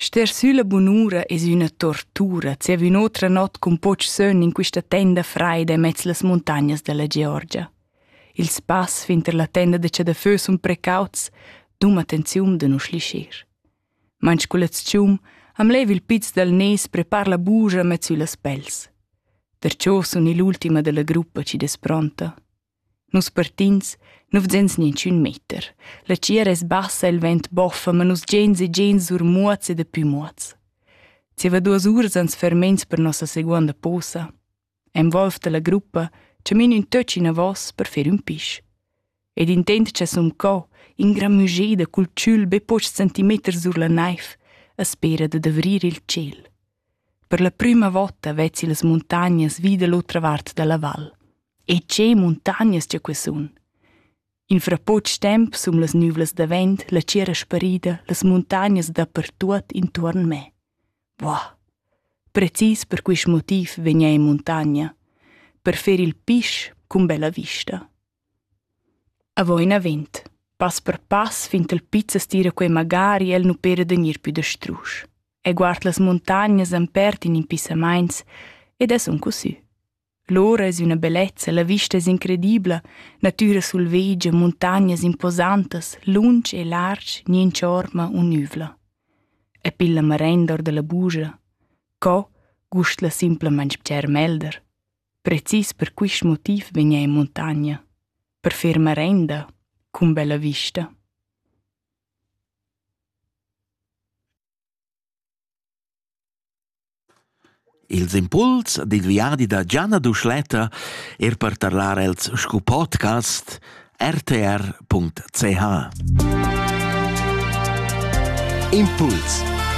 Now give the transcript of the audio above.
Ster sülla bunura es üna tortura zieva ün'otra not cun poch sön in quista tenda fraida immez las muntagnas della Georgia. Il spass finter la tenda da chadafö sun precauts, dum attenziun da nu schlischir. Manch culetschum am leiv il piz dal nes prepar la buja mez süllas pels. Perciò sun ill'ultima della gruppa chi es pronta. Nus partins, nu vzens ninchün meter. La tgiera es bassa, il vent boffa, ma nus giains e giains sur muots e dapü muots. Zieva duos uras ans fermains per nossa seguonda posa. En Wolf da la gruppa chamin ün töch inavos per fer ün pisch. Ed intent cha sun co, ingramügeda cul tschül be pochs centimeters sur la naiv, a spera da davrir il tschel. Per la prüma vota vezzi las muntagnas vi da l'otra vart da la val. E tge muntagnas tg'ei quei sun! In fra poc temps sun las nüvlas davent la tgiera sparida las muntagnas dapertuot intuorn me. Buah! Precis per quist motiv vegna in muntagna, per fer il pisch cun bella vista. Avo inavent, pass per pass fin ch'el pizza stira quei magari el nu pera da gnir pü da strusch. E guard las muntagnas empert in impissamaints ed es un cusü. Lura es üna bellezza, la vista es incredibla, natüra sulvedgia, muntagnas imposantas, lunsch e larsch, niente orma unüvla. E pilla marain dor da la bugia. Co gust la simplamaing bger melder. Precis per quist motiv vegna in montagna. Per fer marenda, cun bella vista. Ils impuls dil viadi da Gianna Duschletta er per tarlar els sco podcast rtr.ch Impuls